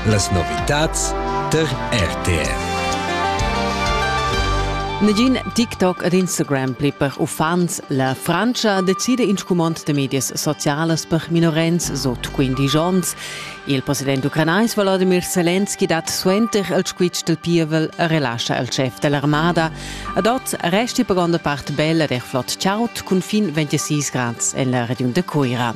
Las novitads tar RTR. Negin TikTok ed Instagram pli per uffants. La Frantscha decida in scumond de medias socialas per minorens sot 15 onns. Il president ucranais Volodymyr Zelensky dat suenter il squitsch del pievel e relascha il chef dell'armada ad ot resti per gronda part bella der flott Chaut cun fin 26 grads en la regiun de Cuira.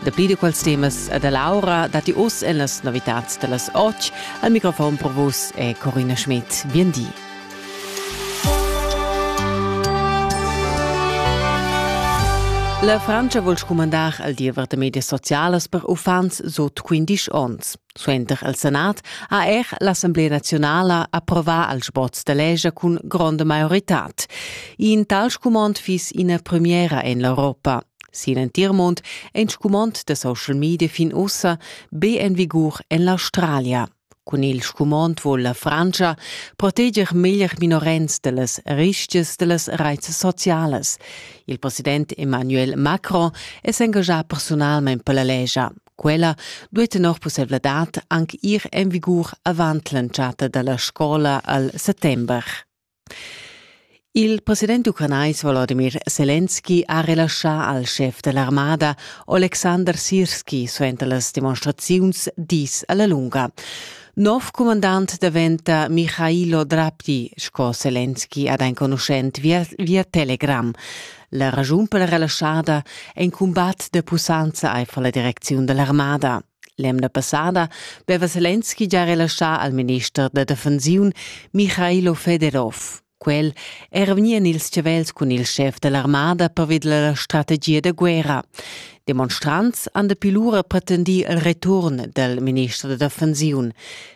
Dapi da quels temas e da l'aura datti oz en las novitads da las 8 al microfon per vus è Corina Schmidt. Bien di. La Francia vuol scumandar al diever da medias socialas per uffants sut 15 onns. Suenter il Senat ha er l'Assemblea naziunala approvà il sboz da legge cun gronda maiorità. In tal scumond fiss ina premiera en l'Europa. Sin entir mund è in scumond da social media fin ussa be en vigur en l'Australia. Cun il scumond vul la Frantscha proteger meglier minorens da las rischias da las raits socialas. Il president Emmanuel Macron è s'engaschà personalmain per la legia. Quella duai tenor pussevladad anc ir en vigur avant l'entschatta da la scola al settember. Il president ucranais Volodymyr Selenski ha relaschà al schef da l'armada Oleksandr Sirski suenter las demonstraziuns dis a la lunga. Nov cumandant daventa Michailo Drapti, sco Selenski ad enconuschent via, via Telegram. La raschun per la relaschada è in cumbat da pussanza aifer la direcziun da l'armada. L'emna passada veva Selenski già relaschà al minister da defensiun Michailo Fedorov. Quel era vegnì en ils chavels cun il schef dell'armada perved la strategia da guerra. Demonstrants han dapi lura pretendì il return del minister da defensiun.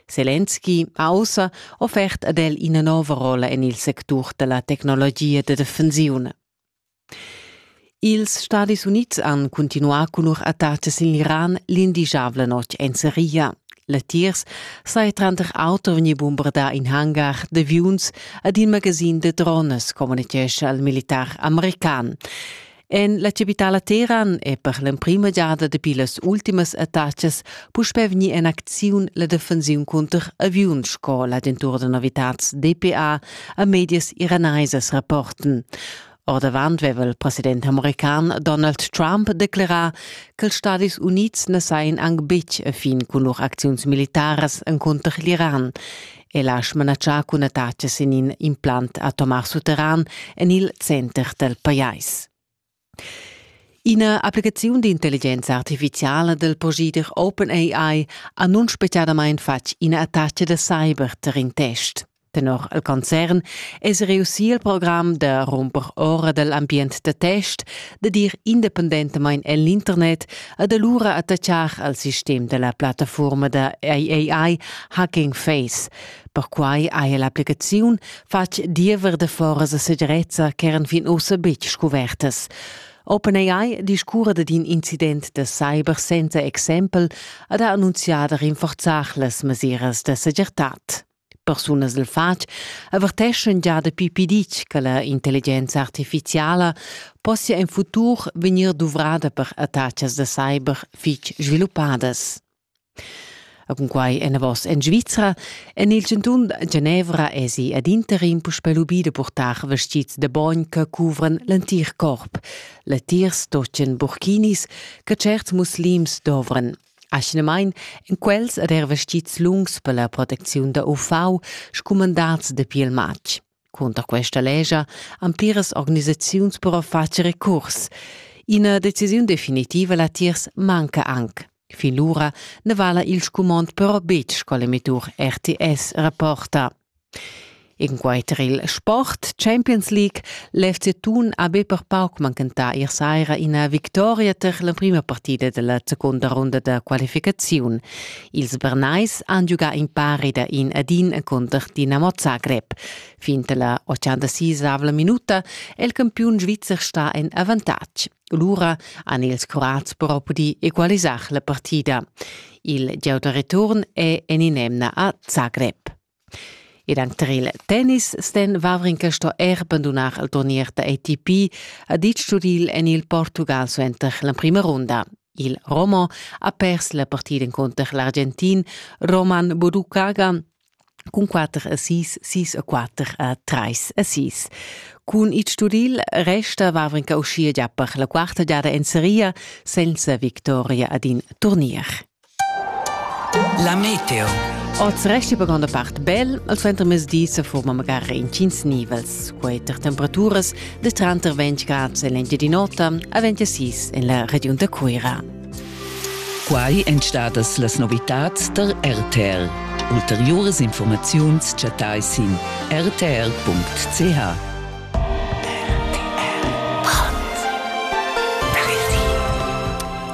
Selenski ha ussa offert ad el ina nova rolla en il sectur della tecnologia da defensiun. Ils Stadis Unids han cuntinuà cun lur attacas sin l'Iran l'indigiabla notg en Seria. Latiers saja tranter auter vegnì bombardà in hangar d'aviuns ed in magasin da drones, communitgescha il militar american. En la capitala Teheran è per l'emprima giada dapi las ultimas attacas puspè vegnì en acziun la defensiun cunter aviuns sco l'agentura da novitads DPA e medias iranaisas rapporten. Ordavant veva il president american Donald Trump declerà ch'ils Stadis Unids na sajan anc betg a fin cun lur acziuns militaras encunter l'Iran e l'ha smanatschà cun attacas en in implant atomar sutterran en il center dal pajais. Ina applicaziun d'intelligenza artifiziala del procedere OpenAI ha nun speciadamain fatg ina attacca da cyber tar in test. Tenor il concern es reussì il program da rumper ora dal ambient da test, da dir independentamain en l'internet ed alura attachar al sistem da la plattafuorma da AAI Hacking Face. Perquai haja l'applicaziun fatg diever da foras a segirezza ch'eran fin ussa betg scuvertas. OpenAI discurre d'in incident da cyber senza exempel ed ha annunzià da rinforzar las mesiras da segirtad. Persunas del fatg averteschan già dapi piditg che la intelligenza artificiala possia in futur vegnir duvrada per attachas da cyber fitg sviluppadas. A cunquai enavos en Svizra, en il cantun Genevra esi ad interim puspè lubì da purtar vestits da bogn che cuvran l'entir corp. Latiers stochen burkinis che certs muslims dovran Aschinamain èn quels er er vestids lungs per la protecziun da UV scumandads dapi il matg. Cunter questa lescha han pliras organisaziuns però fatg recurs. Ina decisiun definitiva latiers manca anc. Fin lura na vala il scumond però betg sco l'emettur RTS rapporta. Inquaiter il sport Champions League l'FC Thun ha be per pauc manchentà ier saira ina victoria tar l'emprima partida della secunda runda da qualificaziun. Ils Bernais han giugà in pari da in ad in cunter Dinamo Zagreb. Fin dalla 86 minuta è il campiun svizzer sta en avantatg. Lura han ils Croats però pudì equalisar la partida. Il gieu da return è en in'emna a Zagreb. Ed anter il tennis ston Wawrinka sto er bandunar il turnier da ATP, ha ditg Turil en il Portugal suenter l'emprima runda. Il Romo ha pers la partida encunter l'Argentin Roman Budukaga cun 4 a 6, 6 a 4 a 3 a 6. Cun il Sturil resta Wawrinka uschia gia per la quarta giada en seria senza victoria ad in turnier. La meteo. Oz resti per granda part bel, al suentermezdi se forma magari intgins nivels, quei tar temperaturas de tranter 20 grad en l'Engiadin'Ota a 26 en la regiun da Cuira. Quai èn stadas las novitads der RTL. Ulteriores Informaziuns chattai sin rtl.ch.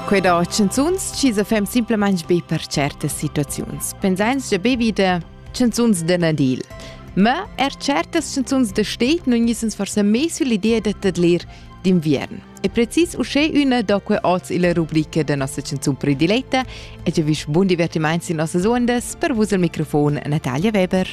Quella chanzuns chi sa fem simplamaing be per certas situaziuns. Pensains già be vita chanzuns da Nadil. Ma er certas chanzuns da steht nun gnissens forsa meis l'idea da tadlir d'inviern. E precis uschè üna da que oz illa rubrica da nossa chanzun prediletta e già vis bun divertimaints in nossas ondas per vus al microfon Natalia Weber.